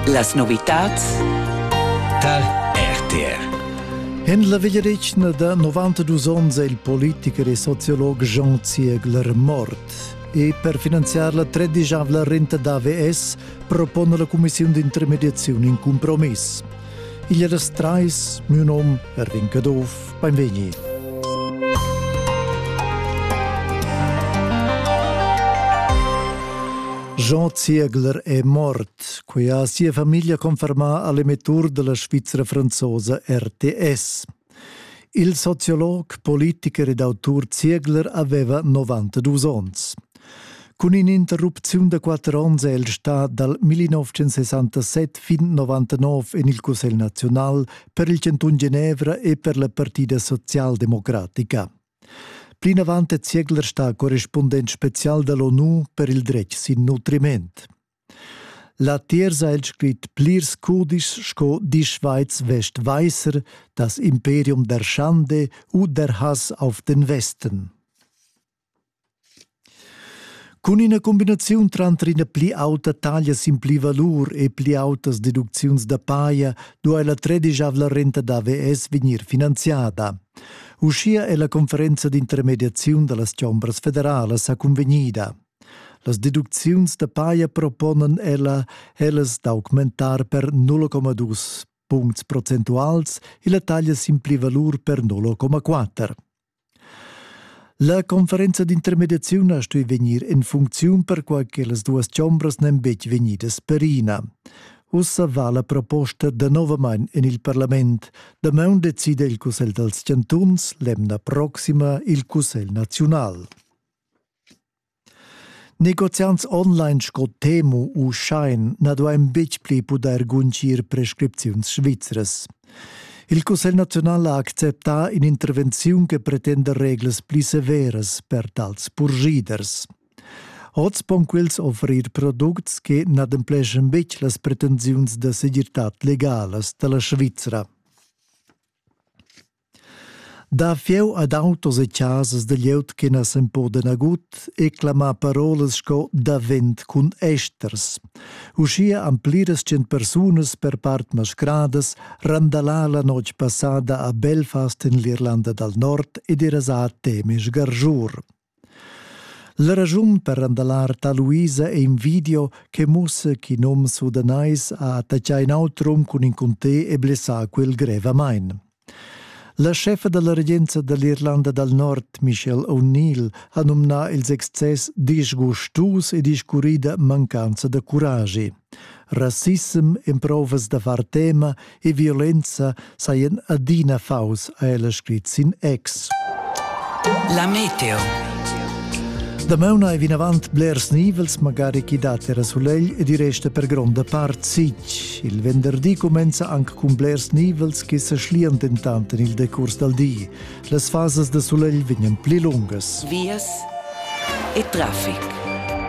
Las novitads tar RTR. En la vegliadetgna da 92 onns è il politicher e sociolog Jean Ziegler mort. E per finanziar la tredisavla renta d'AVS propone la Commissiun d'intermediazione in compromiss. Igl è das trais, miu nom Erwin Caduff, beinvegni. Jean Ziegler è mort. Quei ha sia famiglia confermà all'emettur della Svizzera franzosa RTS. Il sociolog, politicher ed autur Ziegler aveva 92 onns. Cun in'interrupziun da quatter onns è el stà dal 1967 fin 99 en il Cussegl naziunal per il Cantun Genevra e per la Partida socialdemocratica. Plinavant è Ziegler stà correspundent spezial da l'ONU per il dretg sin nutriment. Latiers ha el scrit plirs cudischs sco Die Schweiz Westweißer, Das Imperium der Schande u Der Hass auf den Westen. Cun ina cumbinaziun tranter ina pli auta taglia sin pli valur e pli autas deducziuns da paja duai la tredisavla renta d'AVS vegnir finanziada. Uschia è la conferenza d'intermediaziun da las chombras federalas sa cunvegnida. Las deducziuns da paja proponan ella ellas d'augmentar per 0,2 puncts procentuals e la taglia sin plivalur per 0,4. La conferenza d'intermediaziun ha stuì vegnir en funcziun perquai che las duas chombras n'èn betg vegnidas perina. Ussa va la proposta danovamain en il parlament. Damaun decida il Cussegl dals chantuns, l'emna proxima il Cussegl naziunal. Negoziants online sco Temu u Shine na duain betg pli pudair guntgir prescripziuns svizras. Il Cussegl naziunal ha acceptà in'intervenziun che pretenda reglas pli severas per tals purschiders. Oz pon quels offrir products che n'adempleschan betg las pretensiuns da segirtad legalas da la Svizra. Da fieu ad autos e chasas da glieud che na s'empordan nagut e clamà parolas sco davent cun esters. Uschia han pliras cent persunas per part mascradas randalà la notg passada a Belfast en l'Irlanda dal Nord ed era a Temes Garjur. La raschun per randalar Taluisa è in video che mussa ch'in um sudanais ha attaccà in auter um cun in cuntè e blessà quel grevamain. La scheffa da la regenza da l'Irlanda dal Nord, Michelle O'Neill, ha numnà ils excess disgustus e discurrida mancanza da curagi. Rassissem, emprovas da far tema e violenza sajan adina faus, ha ella scrit sin ex. La meteo. Damona è vinavant blers nivels, magari chi dat era sulegl e di resta per gronda part sic. Il venderdi cumenza anche cun blers nivels che se schlian dentant in il decurs dal di. Las fasas da sulegl vegnan pli lungas. Vias e traffic.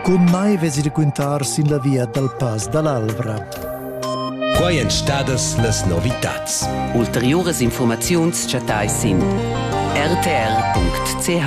Cun mai vesi de quintar sin la via dal Pass dall'Alvra. Quai èn stadas las novitads. Ulteriuras informaziuns chattai sin rtr.ch.